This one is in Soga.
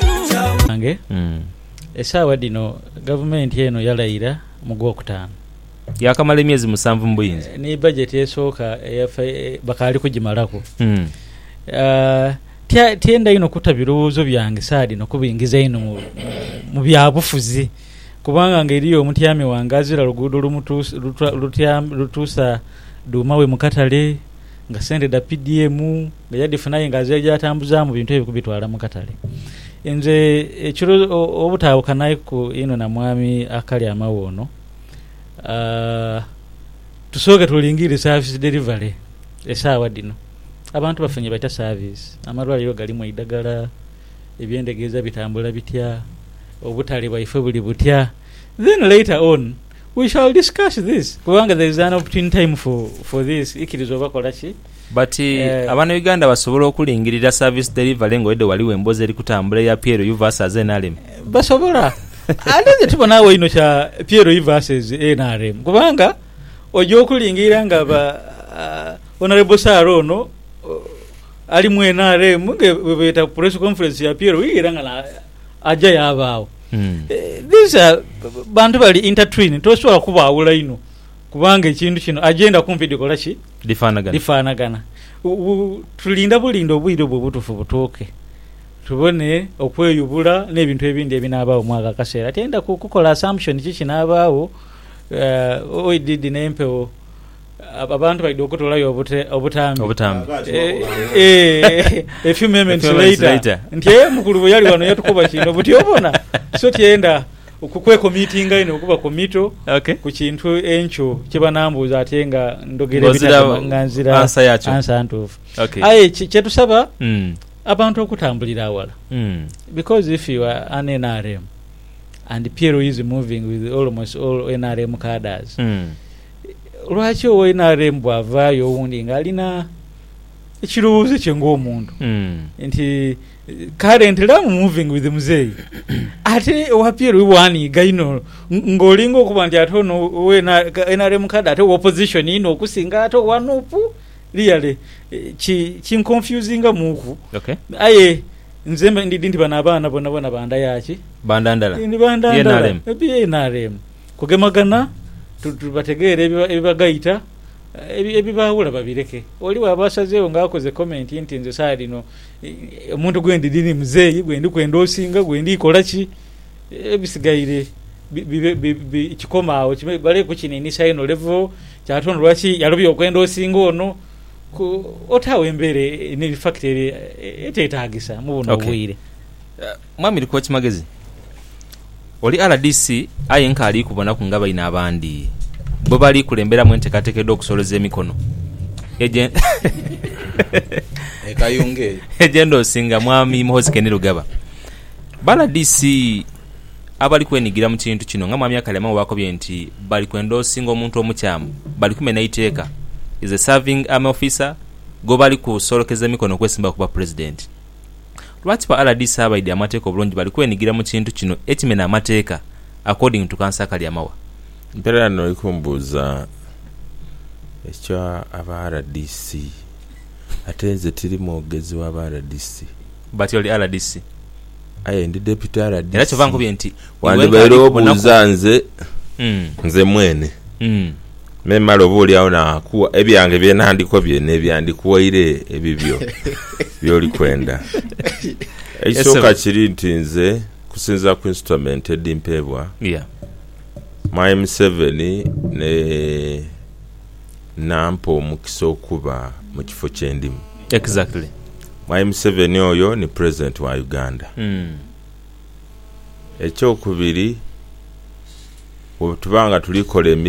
Banange, esaawa dhino gavumenti eno yalaira mu gwokutaanu. Yaakamala emyezi musanvu mu buyinza. Ni bajeti esooka eya fi-, bakaali kugimalaku. Tya, tyenda inho kuta birowoozo byange saa dhino kubingiza inho mu, mu byabufuzi, kubanga nga eriyo omutyami wange azira luguudo lumutuusa, luta, lutyami, lutuusa dhuuma we mu katale, nga sente dha PDM, Nga yadhifuna aye nga azira ye gy'atambuzaamu bintu ebyo kubitwala mu katale. Nze ekiro obutaawukanaiku inho na mwami akali amawo ono, tusooke tulingirire saavisi dherivale. Esaawa dhino abantu bafunye batya saavisi? Amalwaliro galimu eidhagala? Eby'endhegeeza bitambula bitya? Obutale bwaife buli butya? Then later on. We shall discuss this kubanga there is an opportune time for this ikiriza oba kola ki. But abana Uganda basobola okulingirira service delivery nga oidhe wali wembozi eri kutambula eya PLU versus nrm? Basobola ate nze tibona agho inho kya PLU versus nrm kubanga oja okulingirira nga ba Honourable Sir ono ali mu nrm nga bwebeta ku press conference ya PLU era nga aja yabaagho. Mm. Eh, these are bantu bali intertwine, tosobola kubaawula inho kubanga ekintu kino agenda kumpi dhikola ki? Dhifaanagana. Dhifaanagana. Tulinda bulinda obwire obwo obutuufu butuuke tubone okweyubula n'ebintu ebindi ebinaabaawo mwako akaseera. Tiyenda kukola assumption ki kinaabaawo uh, oididi n'empewo Abantu baidha okutoolayo obutambi, obutambi. a few moments later nti ee mukulu bwe yali wano yatukoba kino buti obona so tyenda kwekomitinga inho kuba komito ku kintu enkyo kye banambuuza ate nga ndhogera ebitagema nga nzira ansa ntuufu. Aye kye tusaba abantu okutambulira aghala because if you are an nrm and PLU is moving with almost all nrm cadres Lwaki owaine are mbu avaayo owundi nga alina ekirowoozo kye ng'omuntu nti kale nti love moving with muzeeyi ate owa PL we waaniiga inho ng'olinga okuba nti ate ono owe nrm card ate wa opposition inho okusinga ate owa nup really ki kinconfusingamuuku Okay. aye nze mba ndidhi nti bano abaana bonabona ba nda yaaki? Ba nda ndala? Ndi ba nda Ye ndala. NRM? Ebi NRM. Kugemagana, bategeere ebibagaita, ebibaawula babireke. Oli bw'aba asazeegho nga akoze komenti nti nze saagha dhino omuntu gwe ndidhi ni muzeeyi gwe ndi kwenda osinga, gwe ndi kola ki, ebisigaire bibe kikome agho, bale kukiniinisa inho levo kya tondho. Lwaki yalobye okwenda osinga ono? Otaagho embeera ni fakita eteetaagisa mu buno obwire. Mwami Likookimagezi, oli rdc aye nkaali kubonaku nga baine abandi bwe bali kulemberamu enteekateeka edh'okusoleza emikono egy'endhoosi nga Mwami Muhoozi Kainerugaba. Ba rdc abali kwenigira mu kintu kino nga Mwami Akalya Mao bwakobye nti bali kwendoosinga omuntu omukyamu, bali kumena iteeka, is a serving army officer gwebali kusolekeza emikono okwesimbaku ku bwa Pulezidenti. Lwaki ba rdc abaidhi amateeka obulungi bali kwenigira mu kintu kino ekimena amateeka, According to Councillor Kalyamawa. Mpelera n'oli kumbuuza ekya aba rdc ate nze tiri mwogezi wa ba rdc. But oli rdc. Aye ndi deputy rdc. Era kyova nkubye nti iwe nga Wandibaire ali kubonaku. obuuza nze, Mm, nze mwene, mm. me male oboolyawo naakugha ebyange bye nandikobye n'ebya ndikuwaire ebibyo by'oli kwenda. Ekisooka Esebo. kiri nti nze, okusinziira ku instrument edhimpeebwa Yeah. Mwami Museveni ne nampa omukisa okuba mu kifo kye ndimu. Exactly. Mwami Museveni oyo ni President wa Uganda. Mm. Ekyokubiri, bwetuba nga tuli kola emirimu.